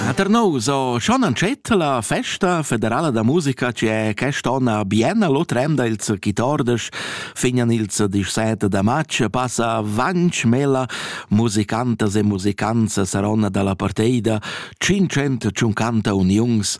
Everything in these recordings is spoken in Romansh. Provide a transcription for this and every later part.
A Ternau so schon antschet la festa federala da musica che quest'onna bien l'otra emda ils chitordes fignan ils 17 da matg passa vanch mela musicantas e musicanza saron dalla parteida 550 uniungs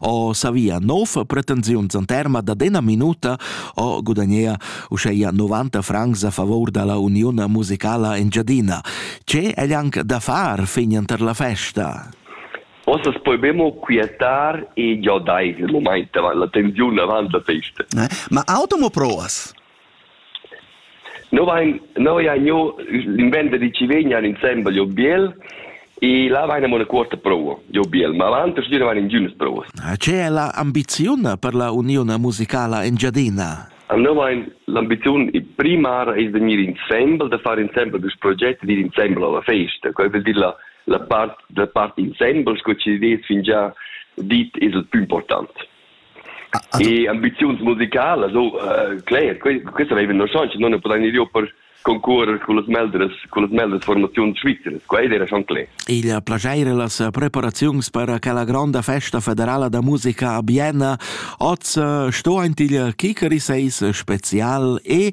o savia nov pretensiuns an terma da dena minuta o gudagnea uscheia 90 francs a favor dalla Uniun musicala Engiadina. Ce è anche da far fin per la festa? Ossa spobemo quietar e giodai il moment, la tensiun avant la festa. Eh? Ma automo proas? No vain no haja gnü l'inventa da chi vegnan insembel giò Biel e là vaina mo üna cuorta prova giò Biel, ma avant a stüdie vain ingünas provas. Che è la ambiziun per la uniun musicala Engiadina? No vain l'ambiziun primara es da gnir insembel, da far insembel dus progetti, d'ir insembel a la festa. Quai völ dir la, la part, la part insembel sco chi d'es fingià dit es il pü important. E ambiziuns musicalas, oh, uh, cler, questa veiva no chans, non ne podain ir per concurer con las meldres, con las meldres formaziuns svizzeres, quai era schon cler. Il plagiaire las preparaziuns per quella granda festa federala da musica a Bienna oz sto aint il Kikeri seis spezial e